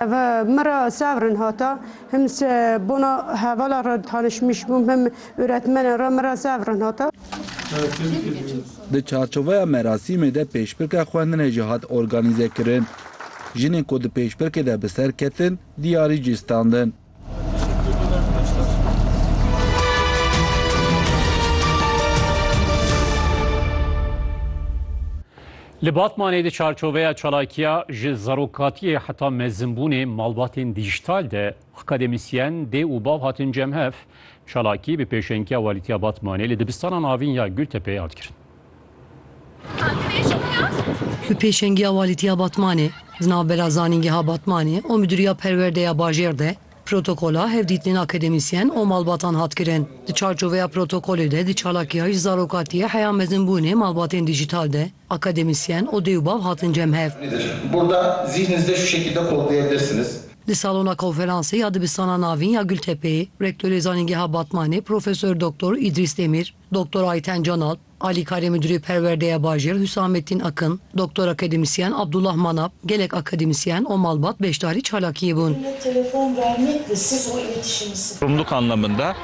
Ev min re sevrin hata him se bona hevala re tanişmiş bûm him uretmenen re min re sevrin hata. Di çarçoveya merasîmê de pêşbirka xwendinê jî hat organîzekirin. Jinên ku di pêşbirkê de bi ser ketin diyarî cî standin. Li Batmanê di çarçoveya çalakiya ji zarokatiyê heta mezimbûnê malbatên dîjîtal de akademisyen, dê û bav hatin cem hev. Çalakî bi pêşengiya Walîtiya Batmanê li dibistanan avîn ya Gultepeyê hat kirin. Bi pêşengiya Walîtiya Batmanê, di navbera Zanîngeha Batmanê û Midûriya Perwerde ya Bajêr de protokola hevdîtinên akademîsyen û malbatan hat kirin. Di çarçoveya protokolê de di çalakiya ji zarokatiyê heya mezinbûnê malbatên dîjîtal de akademîsyen û dê û bav hatin cem hev. Di salona konferansê ya Dibistana Navîn ya Gultepeyê, Rektorê Zanîngeha Batmanê Profesor Doktor Îdrîs Demîr, Doktor Ayten Canal, Alîkarê Midûrê Perwerde ya Bajêr Hüsamettin Akın, Doktor Akademisyen Abdullah Manap, gelek akademisyen û malbat beşdarî çalakiyê bûn. Rumluk anlamında.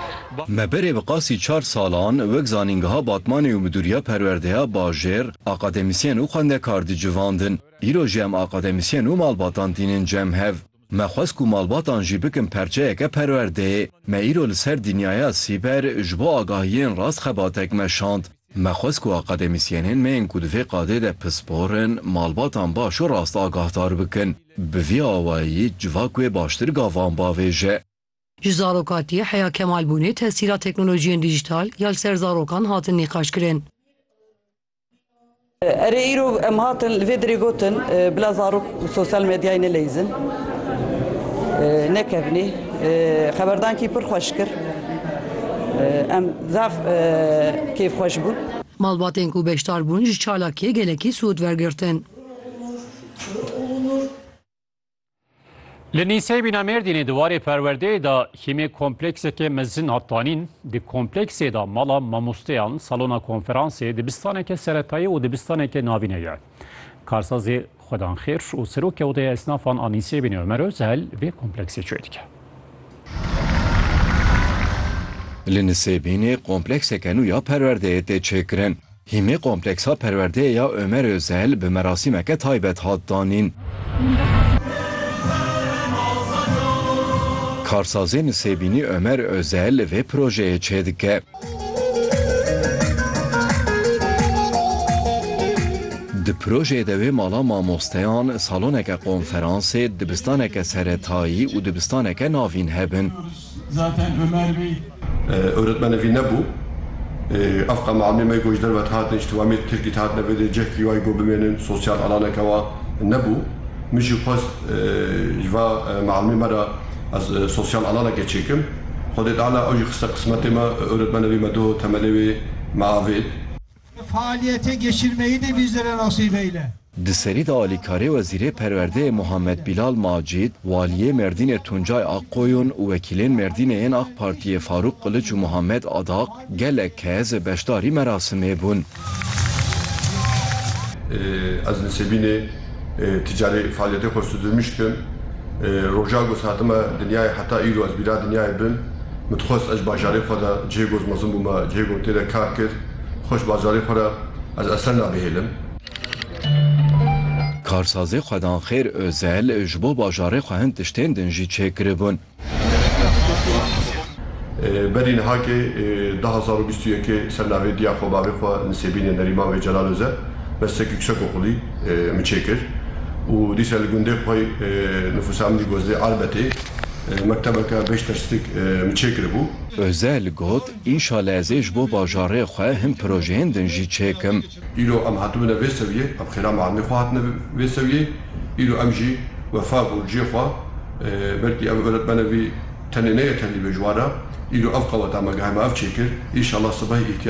Me berê bi qasî çar salan wek zanîngeha Batmanê û Midûriya Perwerdeya Bajêr akademisyen û xwendekar dicivandin. Îro jî em akademisyen û malbatan tînin cem hev. Me xwest ku malbatan jî bikin perçeyeke perwerdeyê. Me îro li ser dînyayeya sîber ji bo agahiyên rast xebatek meşand. Me xwest ku akademîsyenên me yên ku di vê qadê de pispor in, malbatan baş û rast agahdar bikin. Bi vî awayî civak wê baştir gavan bavêje. Ji zarokatiyê heya kemalbûnê tesîra teknolojiyên dîjîtal ya li ser zarokan hatin nîqaşkirin. Erê îro em hatin li vê dirê gotin bila zarok û sosyal medyayê neleyîzin, nekevnê. Xeberdankî pir xweş kir. Em zaf kêfxweş bûn. Malbatên ku beşdar bûn ji çalakiyê gelekî sûd wergirtin. Li Nîsey bîna Mêrdînê di warê perwerdeyê de hîmê kompleksekê mezin hat tanîn. Di kompleksê de mala mamosteyan, salona konferansê, dibistaneke seretayî û dibistaneke navîne ye. Karsazê Xwedanxêr û Serokê Odeya Esnafan a Nîsey bînê Omer Özel vê kompleksê çê dike. Li Nisêbînê komplekseke nû ya perwerdeyê tê çêkirin. Hîmê kompleksa perwerdeyê ya Omer Ozel bi merasîmeke taybet hat danîn. Karsazê Nisêbînî Omer Ozel li vê projeyê çêdike. Di projeyê de wê mala mamosteyan, saloneke konferansê, dibistaneke seretayî û dibistaneke navîn hebin. Zaten Ömer Bey Öğretmeni vî ne bû. Ev qama amê me go ji derve dihatin, ji tiwamê Tirkî dihatine vê dê cehkî wayî go bimênin, sosyal alaneke wa nebû. Min jî xwest ji va mialmê me re ez sosyal alaneke çêkim. Xwedê Teala ew jî xiste qismetê me. Öğretmeni vî me doh temelê wê me avêt. Bi faaliyetê geçirmeyî de bîzire nasîbeyle. Di serî de alîkarê Wezîrê Perwerdeyê Muhammed Bîlal Macîd, Waliyê Mêrdînê Tuncay Akkoyun û wekîlên Mêrdînê yên AK Partiyê Farûk Qiliç û Muhammed Adaq gelek kes beşdarî merasimê bûn. Ez nisêbînê. Ti carî fealîyetê xwe sudirmîş dikim. Roja ku ez hatime dinyayê heta îro ez bîra dinyayê bim. Min dixwest ez ji bajarê xwe de cihê ku ez mezin bûme cihê ku min tê de kar kir. Xwe ji bajarê xwe re ez esen nabihêlim. Karsazê Xwedanxêr Ozel ji bo bajarê xwe hin tiştên din jî çêkiribûn. Berî nihakê du hezar û bîst û yekê ser navê Diya xwe bavê xwe Nisêbînê Nerîman Vê Celal Oze Bestek Yuksak Okulî min çêkir û dîsa li gundê xwe Nifûsa Emdî Gozdê Arbetê mektebeke beş derslik min çêkiribû. Oze li got, Înşale ez ê ji bo bajarê xwe hin projeyên din jî çêkim. Îro em hatibûne vê sewiyê, em xêra malê xwe hatine vê sewiyê. Îro em jî wefa bû li cihê xwe. Belkî ev oretmene vî tenê neye tevlî bê ji wan re. Îro ev qeweta me gihe me ev çêkir. Înşallah sibehê îhtiyacên